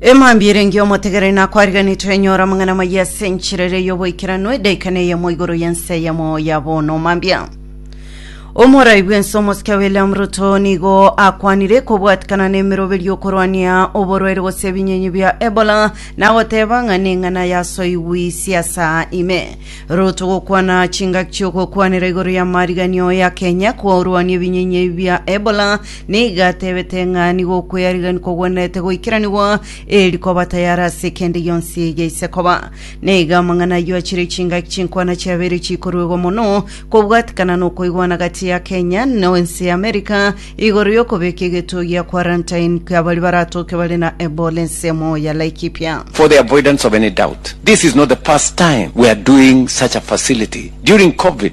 emambi erenge omotegereri nakwariganetwe enyora amang'ana maya ase enchera ere y'oboikeranu edaika na eyemo igoro y'ense eyemo ya bono mambia omorai bw'ense omosike william ruto nigo akwanire kobwatikana n'emeroberio okorwania oborwaire gose ebinyenyi bia ebola nagoteba ng'a neng'ana yasoigwi siasa ime ruto gokwana chingaki chi'ogokwanera igoro y'amariganio ya kenya korwania ebinyenyi bia ebola Nigo atebete ng'a nigo okweyariganigwa kogwenerete goikeranigwa, eri koba tayare ase kende gionsi yaise koba. Nigo amang'ana ayio achire chingaki chinkwana chiabeire chikoruegwa mono kobwatikana na okoigwana gati ya Kenya na ense ya America igoro y'okobeka egetuo gia quarantine kia baria baratoke bare na Ebola ensemo ya Laikipia. For the avoidance of any doubt, this is not the first time we are doing such a facility. During COVID,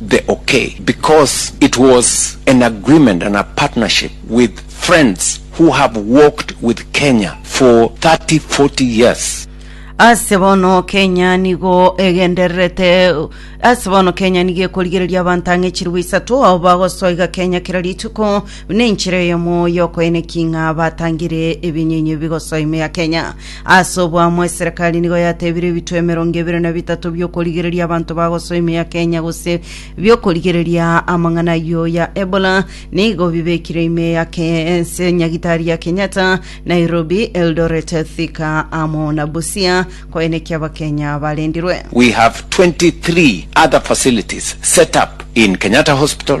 the okay because it was an agreement and a partnership with friends who have walked with Kenya for 30, 40 years. Ase bono Kenya nigo egendererete ase bono Kenya nigo ekorigereria abanto ang'e chirwa isato abo bagosoa iga Kenya kera rituko nenchera eyomo yokoenekia ng'a batangire ebinyenye bigosoa ime ya Kenya. Ase obwamo eserekari nigo yatebire ebitwe emerongo ebere na bitato bi'okorigereria abanto bagosoa ime ya Kenya gose bi'okorigereria amang'ana ayio ya Ebola nigo bibekire ime ya Ke- ense nyagitari ya Kenyatta, Nairobi, Eldoret, Thika amo na Busia koenekia Abakenya barendirwe. We have 23 other facilities set up in Kenyatta Hospital,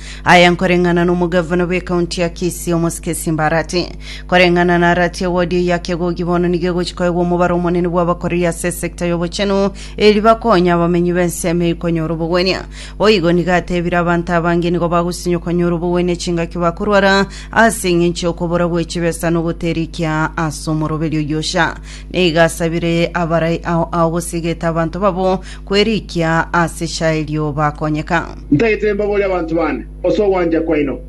Aya nkoreng'ana nomogavana bw'ekaunti ya Kisii omosike Simba Arati. Koreng'ana na Arati ewodi eye ya Kegogi bono nigo egochi koegwa omobaro omonene bw'abakoreri ase esekta y'obochenu eri bakonya abamenyi b'ensemo eye konyora obogwenia. Boigo nigo atebire abanto abange nigo bagosinywa konyora obogwenia chingaki bakorwara ase eng'encho y'okobora gw'echibesa nogoterikia ase omoroberi oyio Osha. Nigo asabire abarai ao ao gose egete abanto babo kwerikia ase echaerio bakonyeka. Ntagete mbaborie abanto bande ase ogwancha kwaino,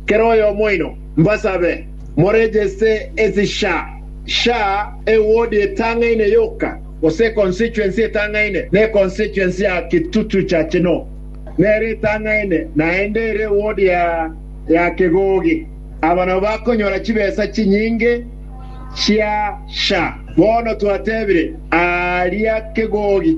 kera oyomo oino, mbasabe morejeste ase sha sha ewodi etang'aine yoka, gose econstituency etang'aine na econstituency ya Kitutu cha Chino, nere etang'aine naende ere ewodi ya ya Kegogi. Aba nabo bakonyora chibesa chinyinge chia sha. Bono twatebire, Aaria Kegogi.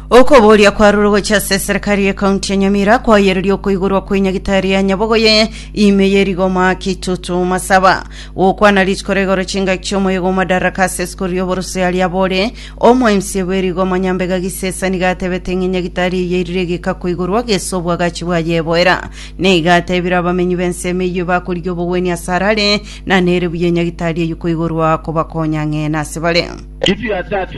Okobooria kwarure gochia ase eserekari y'ekaunti ya Nyamira kwayereria okoigorwa kwe nyagitari ya nyabogoye ime ye rigoma Kitutu Masaba gokwana rituko ra igoro chingaki chi'omoyega o Madaraka ase esukuru y'oborusii aria abore omo mca bwe rigoma Nyambega Gisesani gatebete ng'e nyagitari eye erire egeka koigorwa gese obwagachi bwaye eboera na iga atebire abamenyi b'ensemo eyio bakorigia obogweni ase arare na nere buya nyagitari eyio koigorwa kobakonya ng'e nase bare. Kitu ya tatu,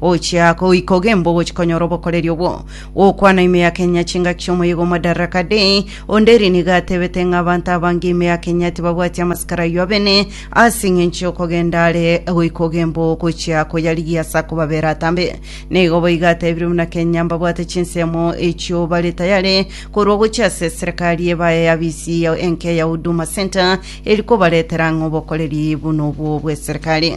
Gochia kogoika ogembe ogochikonyora obokoreri obwo. Gokwana ime ya Kenya chingaki chi'omoyega o Madaraka Day, onde eri nigo atebete ng'a abanto abange ime ya Kenya tibabwati amasikara ayio abene ase engencho y'okogenda are goika ogembe oo gochia koyarigia ase akobabera atambe. Nigo boigo atebire buna Kenya mbabwate chinsemo echio bare tayare korwa gochia ase eserekari ebaye abisi enke ya Huduma Centre eri kobaretera ng'a obokoreri buna obwo bw'eserekari.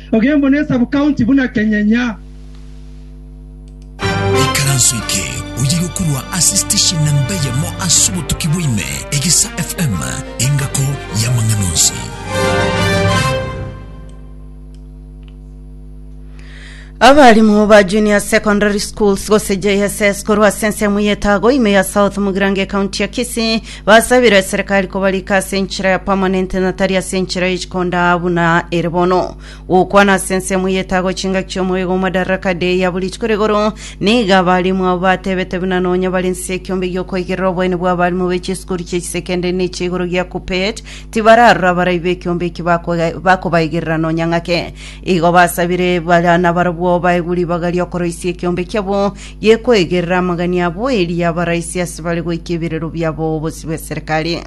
Ogembo ne sub-county buna Kenyenya. Ikaranso eke oyeirwe korwa ase station namba eyemo ase obotuki bwa ime, Egesa FM, engako y'amang'ana onsi. Abarimu ba Junior Secondary Schools gose JSS korwa ase ensemo y'etago ime ya South Mugirango ecounty ya Kisii Basabire eserekari kobarika ase enchera ya permanent na tari ase enchera ye chikondaa buna ere bono. Gokwana ase ensemo ye etago chingaki chi'omoyo igwa Madaraka Day yaburitwe kore igoro, nigo abalimu abwo batebete buna nonya bare nse ekiombe gi'okoigerera oboeni bw'abalimu be chisukuru chie chisekendari ne chia igoro gia Kuppet, tibararora abarai b'ekiombe eki bako- bakobaigerera nonya ng'ake. Igo basabire bara nabarabwo baegwe ribaga ri'okoroisia ekiombe kiabo ye koegerera amagania abo eria abaraisi ase bare goika ebirero biabo obosie bw'eserekari.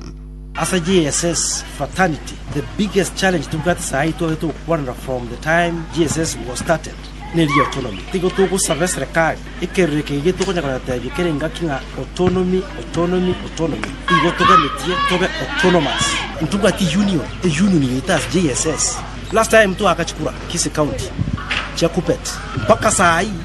Ase GSS fraternity the biggest challenge tobwate sahi eye twabete gokwanera from the time GSS was started neri autonomy. Tigo togosaba eserekari ekerore eke gige tokonya koyotebia kera engaki ng'a autonomy, autonomy, autonomy. Igo toganetie tobe autonomous. Ntobwati union, e union yaito ase GSS. Last time twagacha kura Kisii county chia Kuppet mpaka sahi.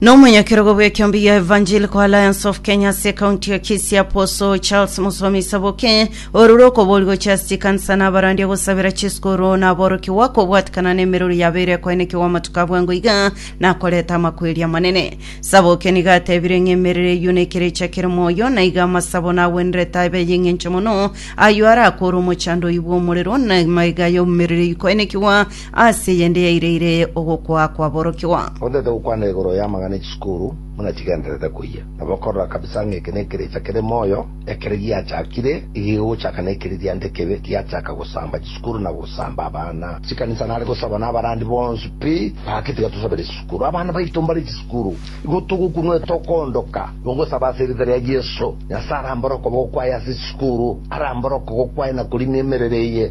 Nomonyakerogo bw'ekeombe ya Evangelical Alliance of Kenya ase ekaunti ya Kisii Apostle Charles Musomi Saboke orure okobori gochia ase chikanisa na abarandi agosabera chisukuru na aborokigwa kobwatikana na emeruru yabeire ekoenekigwa amatuko a bwango iga na koreta amakweri amanene. Saboke nigo atebire ng'a emerere eyio nekerecha kere moyo na iga amasabo nagwenerete abe ay'eng'encho mono ayio arakore omochando oyio bw'omorero na maiga y'omerere ikoenekigwa Ase eyende yaireire ogokwa kwaborokigwa. Otaete gokwana igoro y'amang'ana e chisukuru buna chigendererete koyia, nabo okorora kabisa ng'a eke nekerecha kere moyo, ekero giachakire igigogochaka nekeri diancha kebe giachaka gosamba chisukuru na gosamba abana. Chikanisa nare gosaba na abarandi bonsi pi, gaki tiga tosabere chisukuru abana baito mbare chisukuru. Igo togokunwa etokondoka, igo ngosaba ase erieta ria Yeso, Nyasae arambore okoba gokwaye ase chisukuru, arambore okogokwaye na korina emerero eye.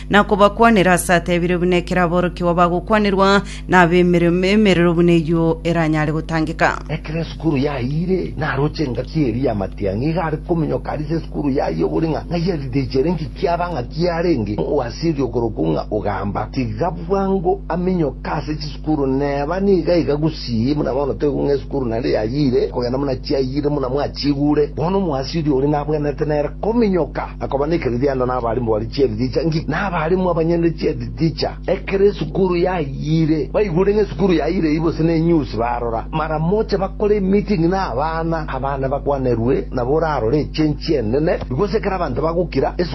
na kobakwanera aase atebiire buna ekero aborokigwa bagokwanerwa nab'emeremo emerero buna eyio eranyare gotangeka. Ekero esukuru yayiire, naroche engaki eria ya matiang'i iga are kominyoka aria ase esukuru yaye obori ng'a ng'ai aridechere engaki aba ng'aki arenge omowasioria okorokwa ng'a Ogamba. Tiga bwango aminyoke ase chisukuru. Sukuru neba niga iga gusii, buna bono toigwa ng'a esukuru naende yayiire kogenda buna chiayiire buna mwachiigure. Bono omoasiri oria nabwenerete nere kominyoka na koba nekeririanda nabarimu baria chi'erithicha nki, na abarimu abanyene chi'erithicha, ekero esukuru yayiire. Baigure ng'a esukuru yayiire eyio gose nenyusi barora, maramoche bakore emiting na abana, abana bakwanerwe, nabo orarore echenchi enene. Igose ekero abanto bagokira, esukuru.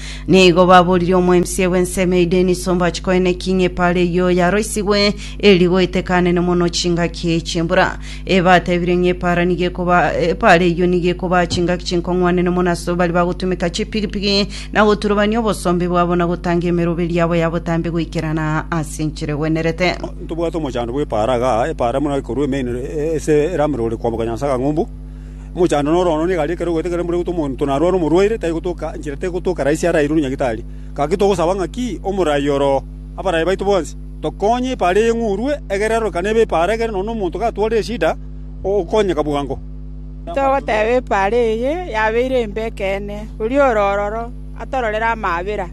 Nigo baboririe omoemisia bw'ensemo eyio Dennis Ombachi koe ne King Epara eyio yaroisigwe eri goetekanene mono chingaki chi'embura. E batebirie ng'a Epara nigo ekoba Epara eyio nigo ekobaa chingaki chinkong'wanene mono ase baria bagotumeka chipigipigi na goturubania obosombe bwabo na gotanga emeroberi yabo ya botambe goikerana ase enchera egwenerete. Ntobwate omochando bw'Epara igaa, Epara buna ekorua emeinoro ase eramero ore kwamboka Nyansaga Ng'umbu. Omochando noro ono nigo aria ekero ogoeta ekero mbura egotwa omonto narware omorwaire, tari gotoka enchera tari gotoka raisi arairwe na nyagitari. Gaki togosaba ng'aki omorai oro abaraia baito bonsi, tokonye epaara eye ng'urwe, egere arorokane ebe epaara egere nonya omonto gatwarire eshida ogokonyeka bwango. Togoteba epaara eye yabeire embe ekeene, oria ore ororo atororere amaabera.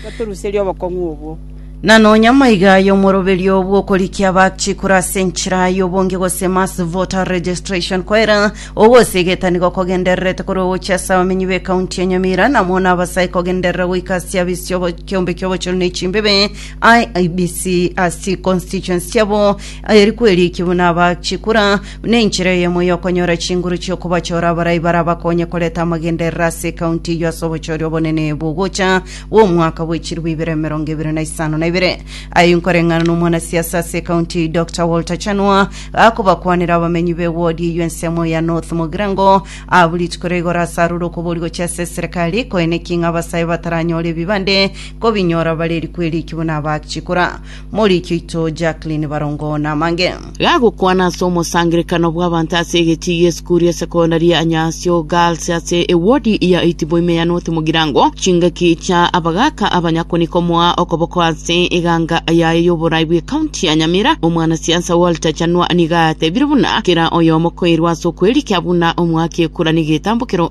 Totoruserie obokong'u obwo. Na nonya maiga aye omoroberio bw'okorikia abachikure ase enchera y'obonge gose mass voter registration koera ogose egetanigo kogendererete korwa gochia ase abamenyi b'ekaunti ya Nyamira na amo nabasae kogenderera goika ase abisi y'obo- kiombe ki'obochori na echimbebe IEBC ase constituency chiabo eri kwerikia buna abachikura Nenchera eyemo y'okonyora chinguru chi'okobachora abarai barabakonye koreta amagenderero ase ekaunti eyio ase obochoria obonene bw'ogocha gw'omwaka bw'echiribu ibere emerongo ebere na isano na ibere. Aye inkoreng'ana n'omwanasiasa ase ekaunti eyio Doctor Walter Chanua gakobakwanera abamenyi b'ewodi eyio ensemo ya North Mogirango abwo rituko ria igoro ase aroro okobori gochia ase eserekari koeneki ng'a abasae bataranyore ebibande kobinyora bare eriku eriki buna abachikora Morikio ito Jacqueline Barongo namange. Gagokwana ase omosangerekano bw'abanto ase egetii gi'esukuru ya sekondari ya Nyasio Girls ase ewodi ya Itibo ime ya North Mugirango, chingaki chia abagaaka abanyakoni komoa okoboko ase eganga yaye y'oborai bw'ekaunti ya Nyamira. Omwanasiasa Walter Chanua nigo atebire buna kera oyomo koirwa ase okwerikia buna omoaki ekura negetambokero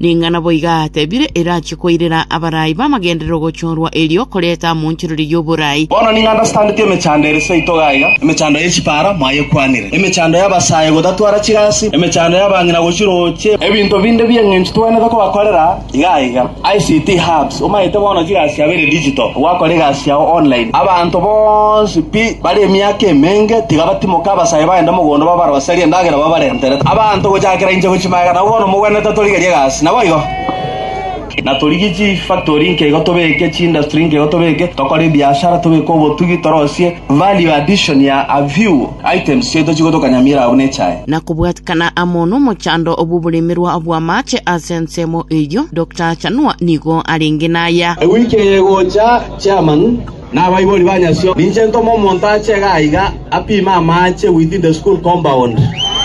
Ning'ana boiga atebire erachie koirera abarai b'amagenderero ogochorwa erio koreta amonchereri y'oborai. Bono nigo ande asetandeti emechando ere seito iga iga, emechando ye chipara mwayekwanire, emechando y'abasae gotatwara chigasi, emechando y'abang'ina gochia roche. Ebinto binde bi'engencho togwenerete kobakorera. Iga iga, ICT Hubs, omanyete bono chigasi chiabo ere digital, gwakora egasi yao online. Abanto bonsi pi bare emiaka emenge tiga batimoke abasae bagende mogondo babaroserie endagera babarentere. Abanto gochakera inche gochia magega nabo bono mogwenerete atorigerie egasi. Naboigo? Na torigie chifactory inke igo tobeke, chiindustry inke igo tobeke, tokore ebiashara, tobeke obotugi, torosie value addition ya a few. Items chiaito chigotokanyamiera abwo nechae. na kobwatikana amo nomochando bw'oboremerwa bw'amaache ase ensemo eyio, Doctor Achanua nigo arenge naya. Ewiki eye egocha, Chairman na abaibori ba nyasio, ninche ntome omonto ache iga aiga apime amaache within the school compound,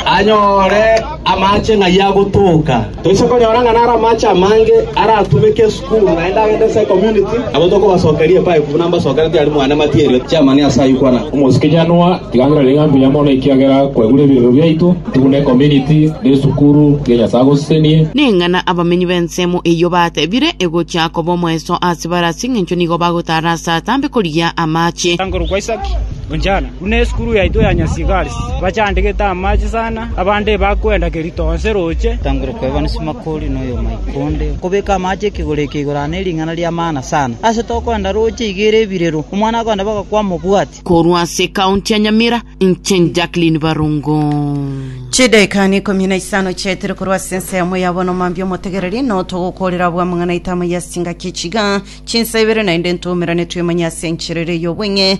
anyore amaache ng'ai agotoka. Toise konyora ng'a naro amache amange aratumeke esukuru, naende agende ase ecommunity, nabo tokobasokeria epipe, buna mbasokerete aria mwane material chiamani ase ayio kwana. Omosike Januar, tiga ng'irore ng'a mbuya mono ekiagera kwegure ebiegwa biaito, tibune ecommunity, na esukuru, tiga Nyasae agosesenie. Ning'ana abamenyi b'ensemo eyio batebire, Egochia koba omoeso ase bare ase engencho nigo bagotara ase atambe korigia amache. Korwa kwa Isaki, Onjana, Buna esukuru yaito ya Nyasigaris, bachandegete amache sana, abande bakwenda kerito onsi roche. Tangera kwebana Simakori na oyomoika onde, okobeka amache ekegoro eke igoro aa nering'ana ri'amaana sana. Ase tokwenda roche iga ere ebirero, omwana agoenda bagakwama obwati. Korwa ase ekaunti ya Nyamira, inche Jacqueline Barongo. Chidaeka neikomi na isano chiaetire korwa ase ensa yamo ya bono mambia omotegereri noo togokoorera abwo amang'ana aito amo ya chingaki chiga chinsa ibere naende ntoumerane twemanye ase enchera ere y'obong'e